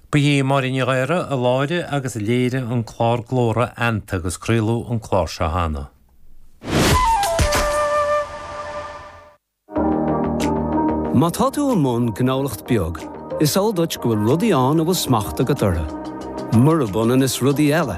Ba í Máirín Ní Ghadhra a láithrigh agus a léirigh an clár Glóra eanta agus craoladh an clár seo cheana. Má tá tú i mbun gnólacht beag, is eol duit go bhfuil rudaí ann a bhfuil smacht agat orthu, murab ionann is rudaí eile.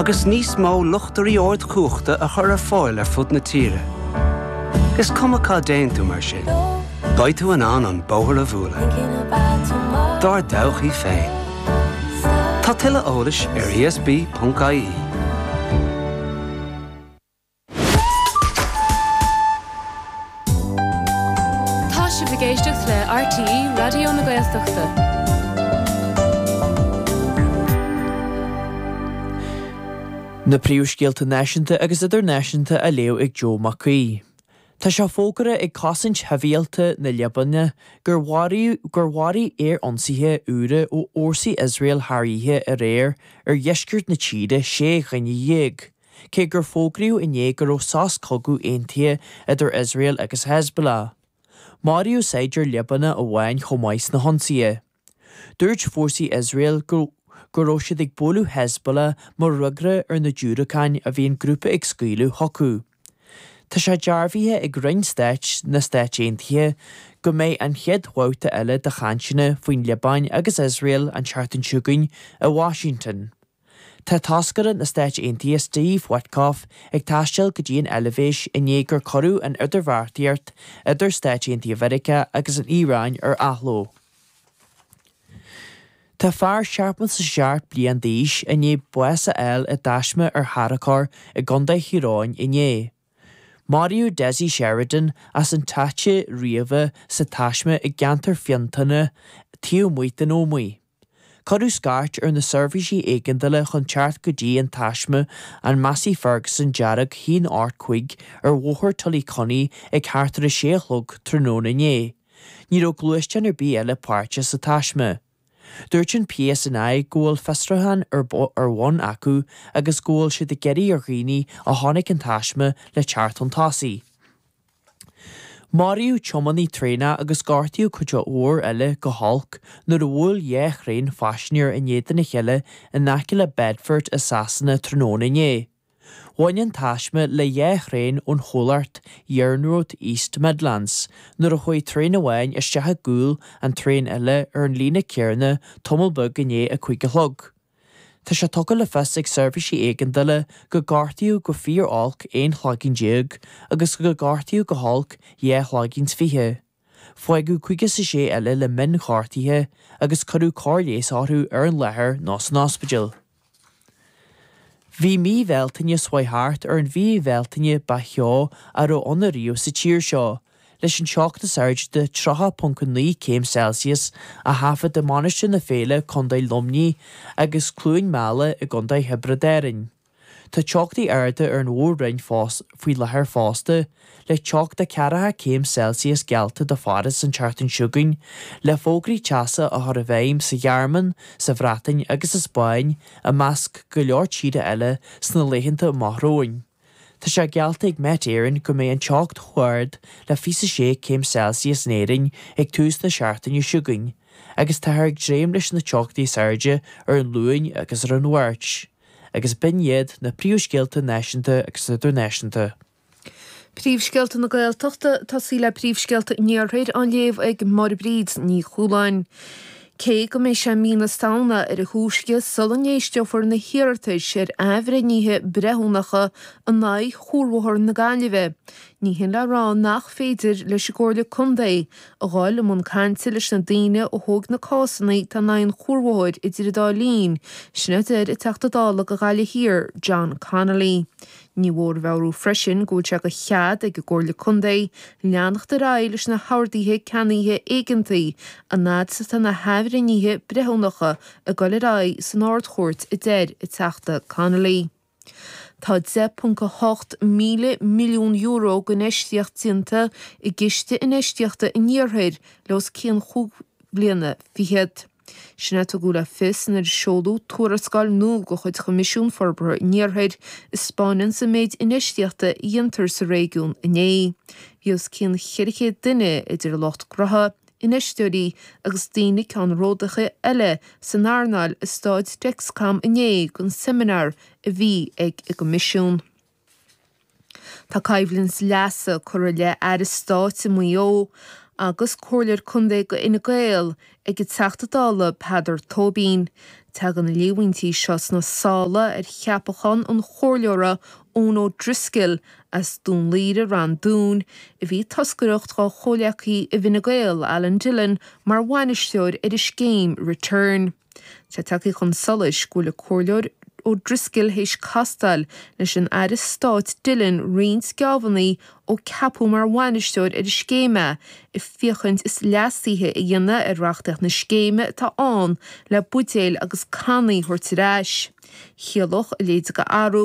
agus níos mó luchtairí ardchumhachta a chur ar fáil ar fud na tíre. Is cuma cá dtéann tú mar sin, beidh tú in ann an bóthar a bhualadh dár dtodhchaí féin. Tá tuilleadh eolais ar esb.ie. Tá sibh ag éisteacht le RTÉ Raidió na Gaeltachta. Na príomhscéalta náisiúnta agus idirnáisiúnta á léamh ag Joe Mac Aoidh. Tá sé fógartha ag Cosaint Shibhialta na Liobáine gur mharaíodh gur mharaigh aer-ionsaithe úra ó fhórsaí Iosrael thar oíche aréir ar dheisceart na tíre sé dhuine dhéag. cé gur fógraíodh inné go raibh sos cogaidh aontaithe idir Iosrael agus Hezbollah. Maraíodh saighdiúir Liobánach amháin chomh maith sna hionsaithe. Dúirt fórsaí Iosrael go go raibh siad ag bualadh Hezbollah mar fhreagra ar na diúracáin a bhí an grúpa ag scaoileadh chucu. Tá sé dearbhaithe ag Roinn Stáit na Stáit Aontaithe go mbeidh an chéad bhabhta eile de chainteanna faoin Liobáin agus Iosrael an tseachtain chugainn i Washington. Tá toscaire na Stáit Aontaithe Steve Witkoff ag taisteal go dtí an Eilbhéis i ndiaidh gur cuireadh an idirbheartaíocht idir Stáit Aontaithe Mheiriceá agus an Iaráin ar athló. Tá fear seachtó is a seacht bliain d'aois i ndiaidh bás a fháil i dtaisme ar tharracóir i gContae Thír Eoghain inné. Maraíodh Dessie Sheridan as an Táite Riabhach sa taisme i gceantar Fintona taobh amuigh den Ómaigh. Cuireadh scairt ar na seirbhísí éigeandála chun teacht go dtí an taisme, an Massey Ferguson dearg 185 ar Bhóthar Tullycunny ag thart ar 6 a chlog tráthnóna inné. Ní raibh gluaisteán ar bith eile páirteach sa taisme. Dúirt an PSNI go bhfuil fiosrúchán ar bhun acu agus go bhfuil siad ag iarraidh ar dhaoine a chonaic an taisme le teacht chun tosaigh. Maraíodh tiománaí traenach agus gortaíodh cuid mhór eile go holc nuair a bhuail dhá thraein phaisinéir in éadan a chéile in aice le Bedford i Sasana tráthnóna inné. Bhain an taisme le dhá thraein ón chomhlacht iarnród East Midlands nuair a chuaigh traein amháin isteach i gcúl an traein eile ar an líne céarna tamall beag i ndiaidh a cúig a chlog. Tá sé tugtha le fios ag seirbhísí éigeandála gur gortaíodh go fíor-olc aon chloigeann déag agus gur gortaíodh go holc dhá chloigeann 's fiche. Fágadh caoga 's a sé eile le mion-ghortuithe agus cuireadh cóir leighis orthu ar an láthair nó san ospidéal. Bhí mí Bhealtaine seo chuaigh thart ar an mhí Bhealtaine ba theo a raibh ann ariamh sa tír seo, leis an teocht is airde de 30.9 céim Celsius a thaifead i Mainistir na Féile, Co. Luimnigh, agus Cluain Meala i gContae Thiobraid Árainn. Tá teochtaí arda ar an mhór-roinn faoi láthair fosta, le teocht 40 céim Celsius geallta do Pháras an tseachtain seo chugainn, le fógraí teasa á chur i bhfeidhm sa Ghearmáin, sa Bhreatain agus sa Spáinn, i measc go leor tíortha eile, sna laethanta amach romhainn. Tá sé geallta ag Met Éireann go mbeidh an teocht chomh ard le 26 céim Celsius in Éirinn ag tús na seachtaine seo chugainn agus táthar ag dréim leis na teochtaí is airde ar an Luan agus ar an Mháirt agus b'in iad na príomhscéalta náisiúnta agus idirnáisiúnta. Príomhscéalta na Gaeltachta, Tosaigh le príomhscéalta an iarthair á léamh ag Máire Bríd Ní Chualáin. Cé go mbeidh sé mí na Samhna ar a thúisce sula n-éisteofar na hiarratais ar athbhreithnithe breithiúnacha in aghaidh chuarbhóthar na Gaillimhe, ní hin le rá nach féidir leis an gComhairle Contae a ghabháil i mbun cainte leis na daoine a thóg na cásanna atá in aghaidh an chuarbhóthair idir an dá linn, sin a deir an Teachta Dála do Ghaillimh Thiar, John Connolly. Ní mhór a mheabhrú freisin go bhfuil sé de chead ag an gComhairle Contae leanacht ar aghaidh leis na horduithe ceannaithe éigeantaí an fhad is atá na hathbhreithnithe breithiúnacha ag dul ar aghaidh san Ard-Chúirt a deir an Teachta Connolly. Tá 10.8 míle milliún euro d'infheistíocht déanta i gCiste Infheistíochta an Iarthair le os cionn chúig bhliana fichead. Sin a tugadh le fios nuair a seoladh tuarascáil nua de chuid Choimisiún Forbartha an Iarthair, a spáineanns an méid infheistíochta a dhéantar sa réigiún inné. Bhí os cionn 400 duine, idir lucht gnótha, infheisteoirí agus daoine ceannródaíocha eile san earnáil i Stáid Dexcom inné don seimineár a bhí ag an gCoimisiún. Tá coimhlint leasa curtha i leith Aire Stáit i Maigh Eo agus Comhairleoir Contae de Fhine Gael ag an Teachta Dála Peadar Tóibín. Tagann na líomhaintí seo sna sála ar cheapachán an Chomhairleora Eoin O'Driscoll as Dún Laoghaire-Ráth an Dúin, a bhí ag toscaireacht dhá chomhleacaí i bhFine Gael, Alan Dillon mar bhainisteoir ar an scéim Re-turn. Tá tagtha chun solais go bhfuil an Comhairleoir O'Driscoll théis castáil leis an Aire Stáit Dillon roinnt geábhannaí ó ceapadh mar bhainisteoir ar an scéim é, ag féachaint is leasuithe a dhéanamh ar reachtaíocht na scéime atá ann le buidéil agus cannaí a thabhairt ar ais. Chiallódh a leithéid de athrú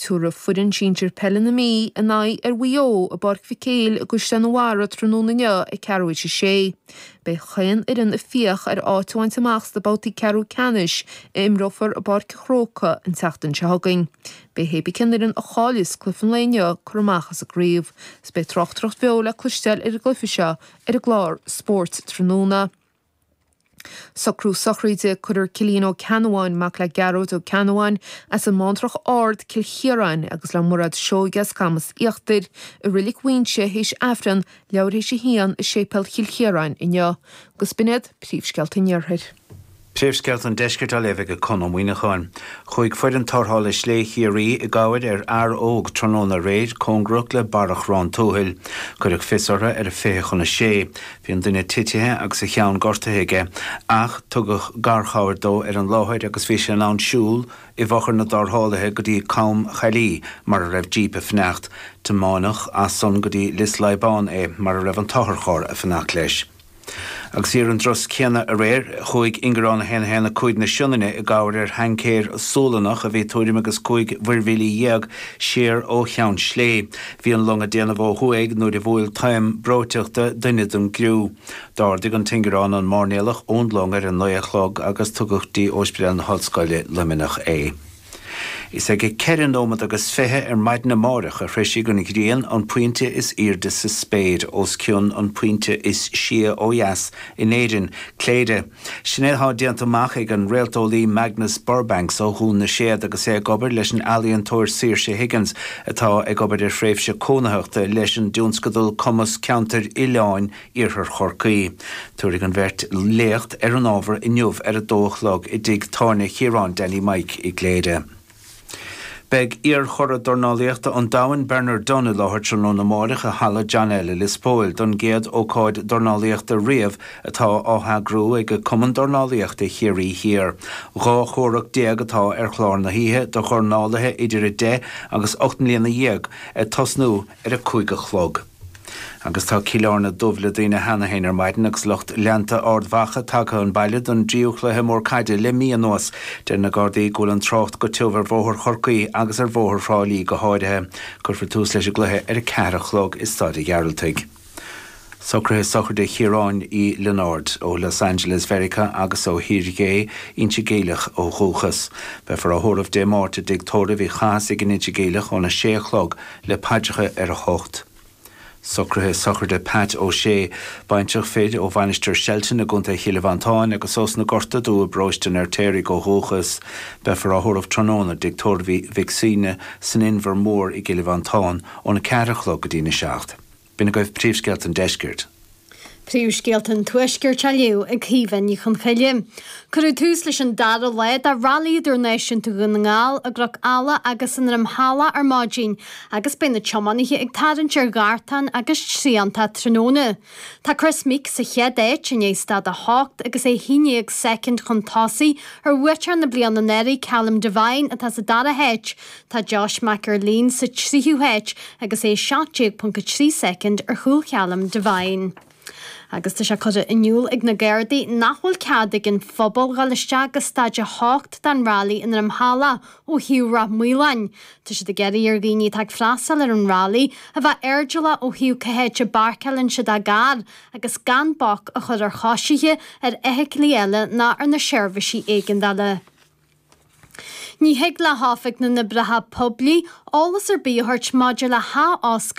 Tabharfaidh foireann sinsir peile na Mí a n-aghaidh ar Mhaigh Eo i bPáirc Mhic Éil i gCaisleán an Bharraigh tráthnóna inniu ag ceathrú théis a sé. Beidh chaon fhoireann ag fiach ar áit a bhaint amach sna babhtaí ceathrú ceannais a imreofar i bPáirc an Chrócaigh an tseachtain seo chugainn. Beidh cibé cén fhoireann a chaillfeas cluiche an lae inniu curtha amach as an gcraobh is beidh tráchtaireacht bheo le cloisteáil ar an gcluiche seo ar an gclár Spórt tráthnóna. Socrú sochraide, Cuirfear Cillian Ó Ceannabháin, mac le Gearóid Ó Ceannabháin, as an mBántrach Ard, Cill Chiaráin, agus le Mairéad Seoighe as Camas Íochtair, i Reilig Mhaínse théis Aifreann leathuair théis a haon i Séipéal Chill Chiaráin inniu, agus b'in iad Príomhscéalta an Iarthair. Príomhscéalta an Deiscirt á léamh ag Conn Ó Muíneacháin. Chuaigh foireann tarrthála Sléibhe Chiarraí i gcabhair ar fhear óg tráthnóna aréir cóngarach le barra Chorrán Tuathail. Cuireadh fios orthu ar a fiche chun a sé. Bhí an duine titithe agus a cheann gortaithe aige, ach tugadh garchabhair dó ar an láthair agus bhí sé in ann siúl i bhfochair na dtarrthálaithe go dtí Com Chaillí mar a raibh jíp ag fanacht. Tiomáineadh as san go dtí Lios Leadhbáin é mar a raibh an t-otharcharr ag fanacht leis. Agus ar an dtráth céanna aréir, chuaigh Ingearán 1 1 5 na Sionainne i gcabhair ar thaincéir Sualannach a bhí tuairim agus cúig mhuirmhíle dhéag siar ó Cheann Sléibhe. Bhí an long ag déanamh ó thuaidh nuair a bhuail taom breoiteachta duine den gcriú. D'ardaigh an t-ingearán an máirnéalach ón long ar a naoi a chlog agus tugadh go dtí Óispidéal na hOllscoile, Luimneach é. Is ag a ceithre nóimead agus fiche ar maidin amáireach a shroisfidh an ghrian an pointe is aoirde sa spéir os cionn an pointe is sia ó dheas in Éirinn, Cléire. Sin é atá déanta amach ag an réalteolaí Magnus Burbanks ó Dhún na Séad agus é ag obair leis an ealaíontóir Saoirse Higgins atá ag obair ar thréimhse cónaitheachta leis an dtionscadal Cumas Ceantair Oileáin Iarthar Chorcaí. Tabharfaidh an bheirt léacht ar an ábhar inniu ar a dó a chlog i dtigh tábhairne Chiaráin Danny Mike i gCléire. Beidh iarchuradh dornálaíochta an domhain Bernard Dunne i láthair tráthnóna amáireach i Halla John L. i Lios Póil don gcéad ócáid dornálaíochta riamh atá á heagrú ag Cumann Dornálaíochta Chiarraí Thiar. Dhá chomhrac déag atá ar chlár na hoíche do dhornálaithe idir 10 agus 18 mbliana ag tosnú ar a cúig a chlog. Agus tá Cill Áirne dubh le daoine cheana féin ar maidin agus lucht leanta Ard Mhacha tagtha 'un baile don dtríú chluiche mór caide le mí anuas. Deir na Gardaí go bhfuil an trácht go tiubh ar bhóthar Chorcaí agus ar bhóthar Thrá Lí go háirithe. Cuirfear tús leis an gcluiche ar a ceathair a chlog i Staid a' Ghearaltaigh. Socruithe sochraide Chiaráin Uí Lionáird, ó Los Angeles Mheiriceá agus ó Thír Dhé, Inse Geimhleach ó dhúchas. Beifear á thórramh Dé Máirt i dTigh Tórraimh Uí Chathasaigh in Inse Geimhleach óna sé a chlog le paidreacha ar a hocht. Socruithe sochraide Pat O Sé, baintreach fir ó Mhainistir Shelton i gContae Chill Mhantáin agus ós na Gorta Dubha i bparóiste an Fheirtéaraigh ó dhúchas, beifear á thórramh tráthnóna i dTigh Tórraimh Mhic Suibhne san Inbhear Mór i gCill Mhantáin óna ceathair a chlog go dtína seacht. B'in agaibh príomhscéalta an deiscirt. Príomhscéalta an tuaiscirt á léamh ag Caoimhe Ní Chonchoille. Cuireadh tús leis an dara lá de Railí Idirnáisiúnta Dhún na nGall i gCnoc Eala agus i nDroim Halla ar maidin agus beidh na tiománaithe ag tarraingt ar Ghartán agus Treantach tráthnóna. Tá Kris Meeke sa chéad áit i ndiaidh Staid 8 agus é 11 soicind chun tosaigh ar bhuaiteoir na bliana anuraidh, Callum Devine, atá sa dara háit. Tá Josh McErlean sa tríú háit agus é 17.3 soicind ar chúl Callum Devine. Agus tá sé curtha in iúl ag na Gardaí nach bhfuil cead ag an phobal dhul isteach go Staid 8 den railí i nDroim halla ó thaobh Ráth Maoláin. Tá siad ag iarraidh ar dhaoine atá ag freastal ar an railí a bheith airdeallach ó thaobh cé háit a bpáirceáileann siad a gcarr agus gan bac a chur ar choisithe, ar fheithiclí eile ná ar na seirbhísí éigeandála. Ní thig le hOifig na nOibreacha Poiblí eolas ar bith a thabhairt maidir le hathoscailt